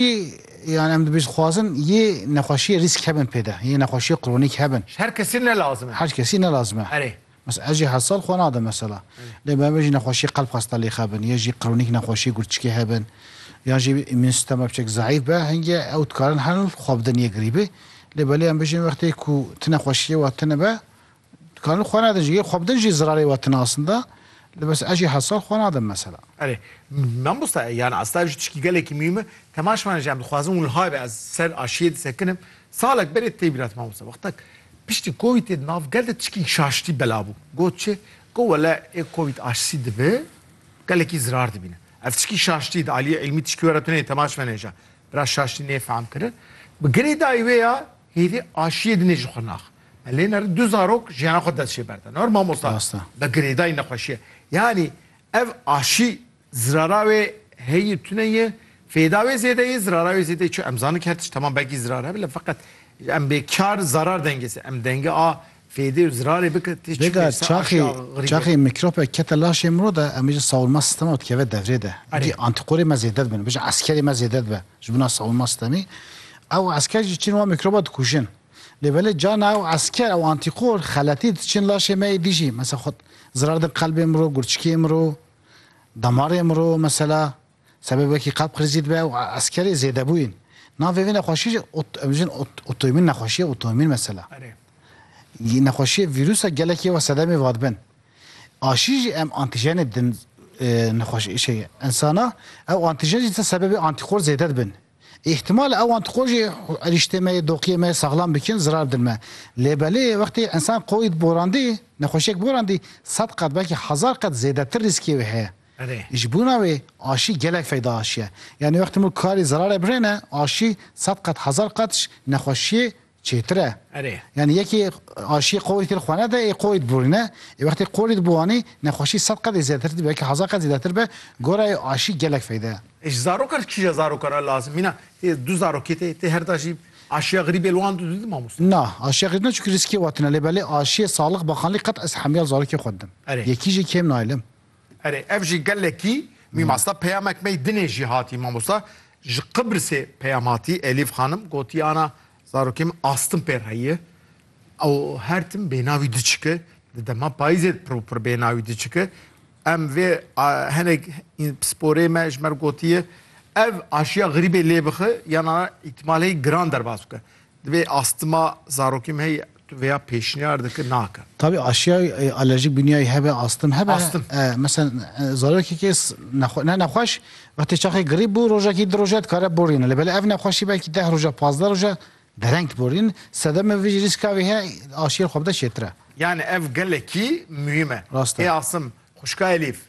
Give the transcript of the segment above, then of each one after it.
Yan em dibêjin dixwazin yê nexweşiyê rîsk hebin pê de, yê nexweşiyê kronîk hebin. Ji her kesî ne lazim e. Her kesî ne lazim e. Erê. Mesela ez jî heft sal xwe nadim mesela. Lê me bêjin nexweşiyê qelb xwesta lêx hebin, yê jî kronîk nexweşiyê gurçikê hebin, yan jî îmûn sîstema biçek zayîf be, hingê ew dikarin herin xwe bidin yê girîbî. Lê belê em bêjin wextê ku ti nexweşiyê we tune be, Dikarin xwe nedin jî, xwe bidin jî zirarê we tinasin de, li bes ez jî heft sal xwe nadin mesela. Erê, mamosta yan asta ev jî tişkî gelekî mîm e, temaş mane jî em dixwazin wiha be ez ser aşiyê disekinim. Salek berê tê bîra te mamosta wextek piştî Covidê di nav gel de tişkî şaştî belav bû. Got çi? Got wele ê Covid aşisî dibe gelekî zirar dibîne. Ev tişkî şaştî di aliyê îlmî tişkî were tune ye temaş mane jî bira şaştî nê fehm kirin. Bi girê dayî wê ya Hêvî aşiyê dinê ji xwe nax. Me lê nere du zarok jiyana xwe dest jê berde. Nor mamosta bi girêdayî nexweşiye. Yanî ev aşî zirara wê heyî tune ye, fêda wê zêde ye, zirara wê zêde ye. Çi em zanin ki her tişt temam belkî zirar hebe lê feqet em bê kar zarar dengê se. Em dengê a Vêga çaxê çaxê mîkrobek kete laşê miro de em ê ji sawulma sîstema dikeve devrê de. Wekî antîkorê me zêde dibin. Bijî eskerê me zêde dibe ji bona sawulma sîstemî. Ew esker jî çin wan mîkroba dikûjin. Lê belê carna ew esker ew antîkor xeletî diçin laşê me êdî jî. Mesela xwed zirar din qelbê miro, gurçikê miro, damarê miro mesela. Sebe wekî qab krizî dibe û eskerê zêdebûyîn. Navê vê nexweşî jî em bijin otoîmîn nexweşiya otoîmîn mesela. Nexweşiyê vîrûsa gelekî wa sedemê vadibin. Aşî jî em antîjenê didin nexweşî şey insana ew antîjen jî disa sebebê antîkor zêde dibin. Îhtimal ew antîkor jî erîştê me yê doqiyê me yê saxlam bikin zirar bidin me. Lê belê wextê insan qoyî borandî nexweşiyek borandî sed qat belkî hezar qat zêdetir rîskê wê heye. Ji bûna wê aşî gelek feyda aşiye. Yanî wextê mû karî zerarê birêne, aşî sed qat hezar qat ji nexweşiyê çêtir e. Yanî yekê aşiyê qorî têr xwe nede ê qorî diborîne. Ê wextê qorî diboranî nexweşî sed qat ê zêdetir dibe belkî hezar qat zêdetir be. Gora wê aşî gelek feyda ye. Ê ji zarokan ji kîja zarokan re lazim mîna? Tê du zarokê tê, tê herda jî aşiya xirîbê li wan du didin mamoste? Na, aşiya xirîb ne çunkî rîskê watin e lê belê aşiyê saxlix bakanlî qet ez hemyal zarokê xwe didim. Yekî jî kêm naylim. Erê ev jî gelekî mî masta peyamek mey dinê jî hatî mamosta ji Qibrisê peyam hatî Elîf xanim gotî ana zarokê min astin pê re ye ew her tim bênavî diçike di dema payîzê pir û pir bênavî diçike em vê hinek pisporê me ji me re gotiye ev aşiya xirîbê lê bixe yan ana îtimaleyî giran derbas bike Divê astima zarokî me heye. Tu vêya pêşniyar dike nake. Tabî aşiya alerjîk bûniyayî hebe, astim hebe. Astim. Meselen zarokekê ne nexweş wextê çaxê girîb bû rojekî di roje dikare borîne. Lê belê ev nexweşî belkî deh roje pazdeh roje dereng diborîn. Sedemê vî rîska vê heye aşiyê xwe bide çêtir e. Yanî ev gelekî muhîm e. Rast e. Ê astim xwişka Elîf.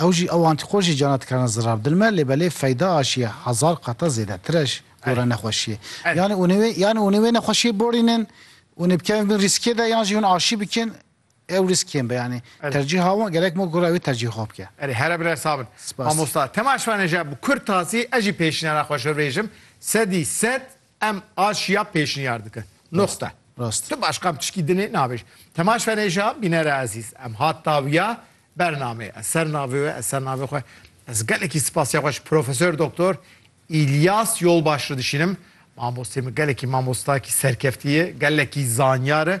Ew jî ew antîkojî cana dikerine zirar bi dil me, lê belê feyda aşiye hezar qata zêdetir e gore nexweşiyê. Yanî hûnê wê yanî hûnê wê nexweşiyê borînin, hûnê bikevin bin rîskê de yan jî hûn aşî bikin, ew rîsk kêm be yanî. Tercîha wan gerek ma gora wê tercîh xwe bike. Erê here bire sax bin. Spas. Mamosta, tema şivanê je bi kurtasî ez jî pêşînara xwe şirbêjim, sedî sed Em aşiya pêşniyar dikin. Nuqte. Rast. Tu başqa pişkî dinê nabêj. Temaş Feneja, bînere ezîz, em hat tawiya bernamê. Ez ser navê we, ez ser navê xwe. Ez gelekî sipasiya xwe ji Profesor Doktor Îlyas Yolbaş re dişînim. Mamosteyê min gelekî mamostakî serkeftî ye, gelekî zanyar e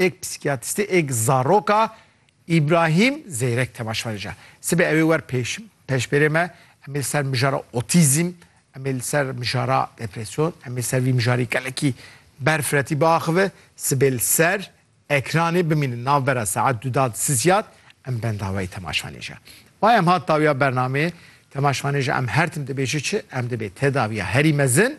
Êk psîkîyatrîstê êk zarok a, Îbrahîm Zeyrek temaşvarê ca. Sibê ewê wer pêş pêşbêrê me, em ê li ser mijara otîzm, em ê li ser mijara depresyon, em ê li ser vî mijarî gelekî berfiretî biaxive, sibê li ser ekranê bimînin navbera saet du da di sizyad em bendaweyê temaşvanê ca. Mayê em hat dawiya bernameyê, temaşvanê ji em her tim dibêje çi, em dibê tedawiya herî mezin